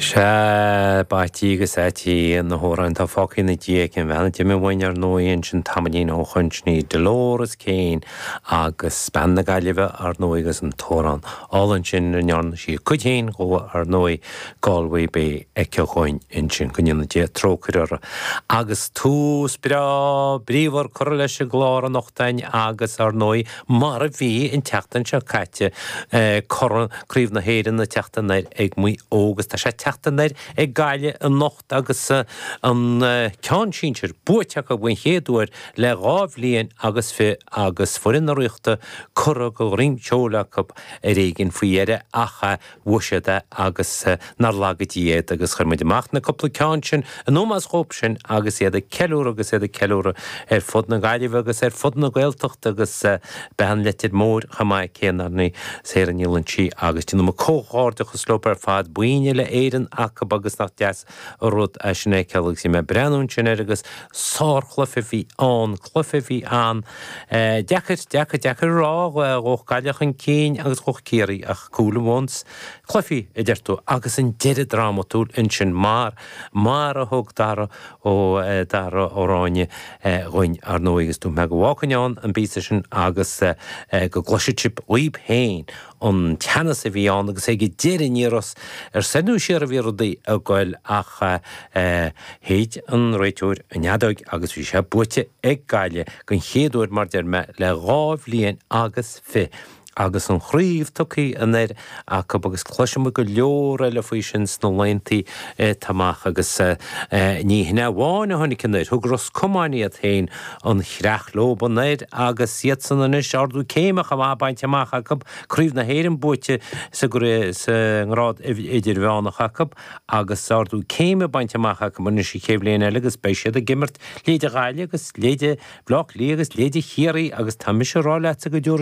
Sea, ba ait í agus ait iad na hamhráin atá fágtha ina diaidh ag an bhean a d'imigh uainn, ar ndóigh, ansin tamaillín ó shoin. Sin í Dolores Keane agus bean na Gaillimhe, ar ndóigh, agus an t-amhrán álainn sin ina ndearna sí a cuid féin dhó, ar ndóigh, Galway Bay aici dhúinn ansin. Go ndéana Dia trócaire uirthi. Agus tús breá, bríomhar curtha leis an gclár anocht againn agus, ar ndóigh, Mar a bhí an tseachtain seo caite, Corn Craobh na hÉireann ag teacht anoir ag Maigh Eo agus tá sé ag teacht anoir ag Gaillimh anocht agus an ceann sinsir buaite acu den chéad uair le dhá bhliain agus fiche agus foireann na Ríochta curtha de dhroim seoil acu ar éigin faoi dheireadh ach Bhuail siad é agus nár laga Dia iad agus chuir muid amach na cúpla ceann sin in ómós dhóibh sin agus iad ag ceiliúradh agus iad ag ceiliúradh ar fud na Gaillimhe agus ar fud na Gaeltachta agus beidh i Leitir Móir chomh maith ag cénarnaí Sarah Ní Loingsigh agus déanaim comhghairdeachas leo ar fad, boinn Uile-Éireann acu agus nach deas rud é sin a fheiceáil agus bhí mé ag breathnú ansin air agus sárchluiche a bhí ann, cluiche a bhí ann, deacair, deacair, deacair a rá, ghabhadh Gaillimh chun cinn agus ghabhadh Ciarraí ach cúl an bhonns, cluiche a deir tú agus an deireadh drámatúil ansin mar, mar a thug Dara Ó, Dara Ó Ráinne dhúinn, ar ndóigh, agus dúirt mé go bhfágfainn ann an píosa sin agus go gcloisfeadh sibh dhaoibh féin. an teannas a bhí ann agus ag an deireadh ní raibh a fhios ar soir nó siar a bhí rudaí ag goil ach shéid an réiteoir an fheadóig agus bhí sé buaite ag Gaillimh den chéad uair mar deir mé le dhá bhliain agus fiche agus an chraobh tugtha anoir acu agus cloisfidh muid go leor eile faoi sin sna laethanta atá amach agus ní hin é amháin a tháinig anoir, thug Ros Comáin iad féin. An chreach leob anoir agus iadsan anois, ardú céime chomh maith bainte amach acu, Craobh na hÉireann buaite sa ngrád idirmheánach acu agus ardú céime bainte amach acu anois an chéad bhliain eile agus beidh siad ag imirt leithéide Ghaillimh agus leithéide Bhleá Cliath agus leithéide Chiarraí agus tá mise a rá leatsa go